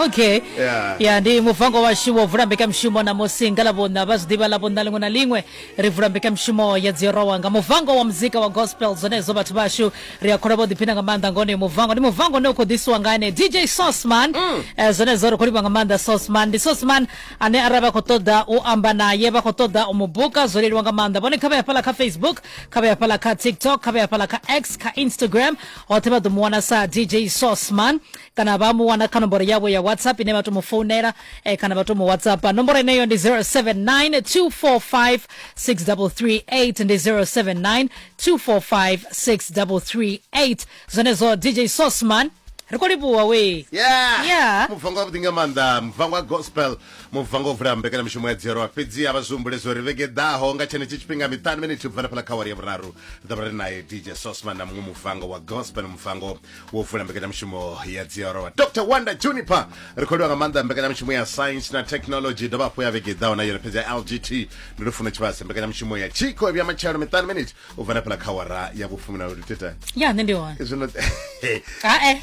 okay Yeah. ya ndi muvango washu wo vula mbekamshumo namusi nga lavhuna vha zwi ḓivha lavhuna liṅwe na liṅwe ri vula mbekamshumo ya dzirowa nga muvango wa muzika wa gospel zwenezwo vhathu vhashu ri a khola vho ḓiphina nga maanḓa nga onoyo muvango ndi muvango une u khou ḓisiwa nga ene dj sosman Eh, zwenezwo ri khou livha nga maanḓa sosman ndi sosman ane arali vha khou ṱoḓa u amba naye vha khou ṱoḓa u mu buka zwo leluwa nga maanḓa vhone kha vha ya fhala kha facebook kha vha ya fhala kha tiktok kha vha ya fhala kha x kha instagram Vhoṱhe vha ḓo mu wana sa DJ Sosman kana vha mu wana kha nomboro yavho ya WhatsApp ine vha tou mu founela eh, kana vha tou mu WhatsAppa. Nomboro yeneyo ndi 079 245 6338 ndi 079 245 6338 zwenezwo DJ Sosman ri khou livhuwa wee Yeah. Yeah. mubvangwa vhuḓi nga maanḓa mubvangwa gospel Mubvango o vula mbekanyamishumo ya Dzhielwa fhedzi a vha zwi humbule zwo ri vhege i ḓaho nga tshenetshi tshifhinga miṱanu minithi u bva hanefhaḽa kha awari ya vhuraru ri ḓo vha ri nae DJ Sosman na muṅwe mubvango wa gospel mubvango wo vula mbekanyamishumo ya Dzhielwa Dr Wanda Juniper ri khou livha nga maanḓa mbekanyamishumo ya science na technology dovha hafhu ya vhege i ḓaho na yone fhedzi ya LGT ndi Lufuno Tshivhase mbekanyamishumo ya Chiko i vhuya matshelo miṱanu minithi u bva hanefhaḽa kha awara ya vhufumi na lutete ya nṋe ndi hone zwino hae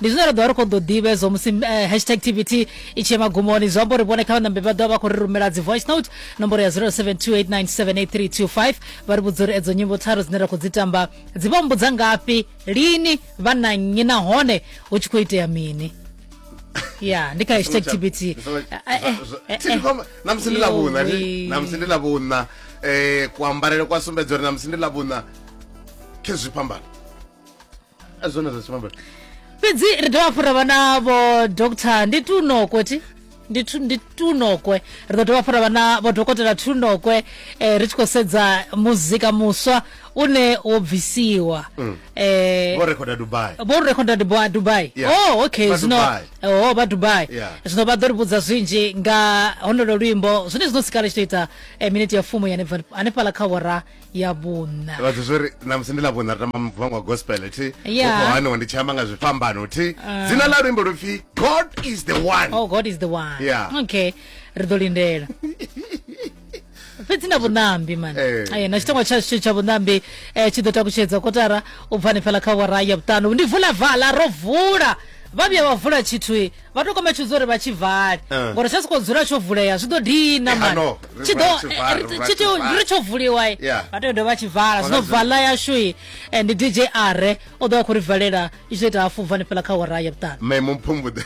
ndi zwine ra ḓovha ri khou ḓo ḓivha hezwo musi eh, hashtag tvt i tshi magumoni zwi amba uri vhone kha vhanambe vha ḓovha vha khou ri rumela dzi voice note nomboro ya 0728978325 vha ri vhudza uri edzo nyimbo tharu dzine ra khou dzi tamba dzi vha mbudza ngafhi lini vha na nnyi nahone hu tshi khou itea mini ya ndi kha hashtag tvt namusi ndi lavhuna namusi ndi lavhuna um eh, kuambarele kwa sumbedza uri namusi ndi lavhuna khezwi phambano azvona zvachimambe fhedzi ri dovha hafhu ra vha na vho doctor ndi tunokwe ti ndi tu- ndi tunokwe ri ḓo dovha hafhu ra vha na vho dokotela tunokwe eh, ri tshi khou sedza muzika muswa une wo bvisiwa eh, vho rekhoda dubai vho rekhoda dubai dubai Yeah. oh okay Vha zwino Dubai. oh vha dubai Yeah. zwino vha ḓo ri vhudza zwinzhi nga honolo luimbo zwine zwino sikala tshi to ita eh, miniti ya fumu ya hanefha- hanefhala kha wora ya vhunṋa vhathu zwo ri namusi ndi ḽa vhunṋa ri tamba muvhango wa gospel thi Yeah. ukho haniwa ndi tshi amba nga zwifhambano thi dzina ḽa luimbo lupfi god is the one oh god is the one Yeah. okay ri ḓo lindela fhedzi na vhuṋambi mani Eh. Eh, na tshitangwa tshashu tsha vhuṋambi eh, tshi ḓo takutshedza kotara u bva hanefhala kha wara ya vhuṱanu ndi vula vala ro vula vha vhuya vha vula tshithu vha to kombetshedza uri vha tshi vale eh. ngori tsha soko dzula tsho vulea zwi ḓo dina eh, mani tshi ḓo ri tsho vuliwa vha tea u dovha tshi vala zwino vala yashu i eh, ndi dj are o ḓo vha khou ri valela i tshi ḓo ita hafu vani fhela kha wara ya vhuṱanu mme mumpfumbuḓe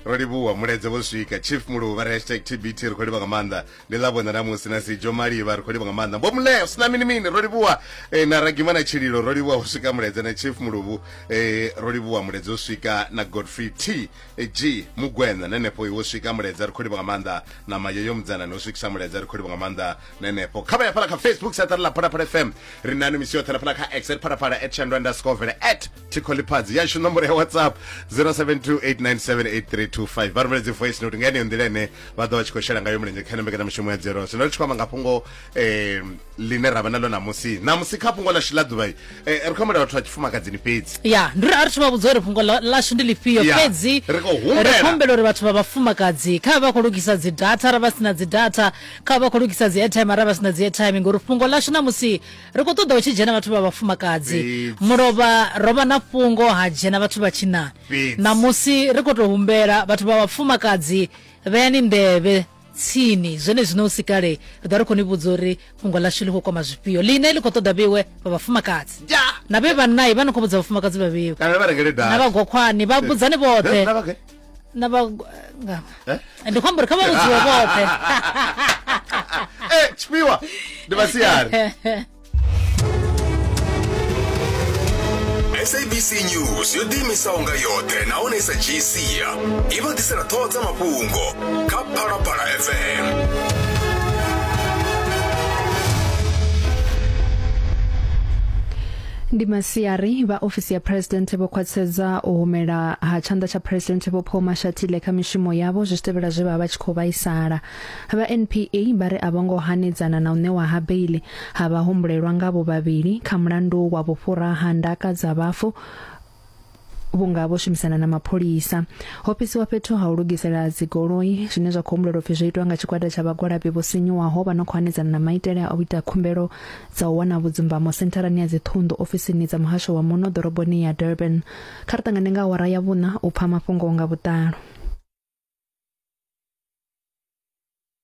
ro livhuwa muleze vho swika chief muluvha re hashtag tbt ri khou livha nga maanḓa ni ḽa vhona namusi na si jo malivha ri khou livha nga maanḓa mbo muleo sina mini mini ro livhuwa eh, na ragima na tshililo ro livhuwa u swika muledze na chief muluvhu eh, ro livhuwa muledze u swika na godfrey t eh, g mugwena na nepo iwo swika muledze ri khou livha nga maanḓa na mayeyo mudzana no swikisa muledze ri khou livha nga maanḓa na nepo kha vha ya fhala kha facebook saṱari ḽa phalaphala fm ri nani misi yoṱhe na fhala kha x at phalaphala at shandwa underscore vele at thikho ḽiphadzi yashu nomboro ya whatsapp 0728978325 vha rumeledzwe voice note nga yeneyo nḓila ine vha ḓo vha tshi khou shela ngayo mulenzhe kha ino mbekanyamushumo ya dzero zwino ri tshi khou amba nga fhungo eh, line ra vha nalo namusi namusi kha fhungo lashu ḽa ḓuvha eh, ri khou humbela vhathu vha tshifumakadzini fhedzi ya ndi ri a ri thoma vhudza uri fhungo lashu ndi lifhio fhedzi ri khou humbela uri vhathu vha vhafumakadzi kha vha khou lugisa dzi data ra vha si na dzi data kha vha khou lugisa dzi airtime ra vha si na dzi airtime ngori fhungo lashu namusi ri khou ṱoḓa hu tshi dzhena vhathu vha vhafumakadzi mulovha ro vha na fhungo ha dzhena vhathu vha tshinani ṋamusi ri khou tou humbela vhathu vha vhafumakadzi vheyani nḓevhe tsini zwene zwino u si kale ri ḓa ri khou ni vhudza uri fhungo ḽashu ḽi khou kwama zwifhio ḽine ḽi khou ṱoḓa vheiwe vha vhafumakadzi na vhe vhannai vha ni khou vhudza vhafumakadzi vha vheiwe na vhagokhwani vha vhudzani vhoṱhe na vha nga- Eh? ndi khombo ri kha vha vhudziwe vhoṱhe Eh, tshifhiwa ndi vhasiari sabc news yo ḓiimisaho nga yoṱhe nahone i sa dzhii sia i vha ḓisela ṱhoho dza mafhungo kha phalaphala fm Ndi masiari vha ofisi ya President vho khwaṱhisedza u humela ha tshanḓa tsha President Vho Paul Mashatile kha mishumo yavho zwi tshi tevhela zwe vha vha vha tshi khou vhaisala. Vha NPA vha ri a vho ngo hanedzana na u ṋewa ha beiḽi ha vhahumbulelwa ngavho vhavhili kha mulandu wa vhufhura ha ndaka dza vhafu vhunga vho shumisana na mapholisa ho fhisiwa fhethu ha u lugisela dzigoloi zwine zwa khou humbulelwa upfi zwo itwa nga tshigwada tsha vhagwalabi vho sinyuwaho vha no khou hanedzana na maitele a u ita khumbelo dza u wana vhudzumbamo sentharani ya dziṱhunḓu ofisini dza muhasho wa muno ḓoroboni ya durban kha ri ṱangane nga awara ya vhuṋa u pfa mafhungo nga vhuṱalo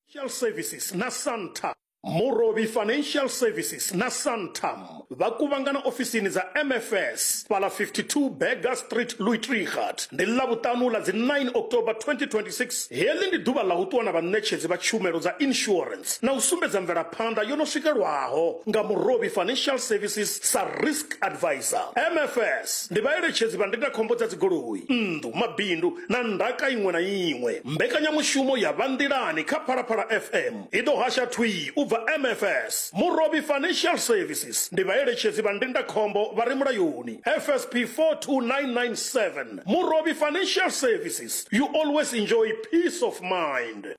Financial Services na Santam. Murovhi Financial Services na Santam vha kuvhangana ofisini dza MFS fhala 52 Berger Street Luitrigat ndi ḽa vhuṱanu ḽa dzi 9 October 2026 heḽi ndi ḓuvha ḽa u ṱuwa na vhaṋetshedzi vha tshumelo dza insurance na u sumbedza mvelaphanḓa yo no swikelwaho nga Murovhi Financial Services sa risk advisor MFS ndi vhaeletshedzi vha ndindakhombo dza dzigoloi nnḓu mabindu na ndaka iṅwe na iṅwe. Mbekanyamushumo ya Vha Nḓilani kha Phalaphala FM i ḓo hasha thwii u bva MFS. Murovhi Financial Services ndi vhaeletshedzi vha ndindakhombo vha re mulayoni, FSP 42997. Murovhi Financial Services, you always enjoy peace of mind.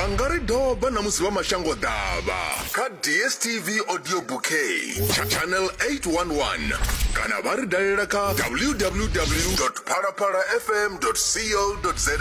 vha nga ri doba na musi vha mashango ḓavha kha dstv audio bouquet tsha channel 811 kana vha ri dalela kha www phalaphalafm co za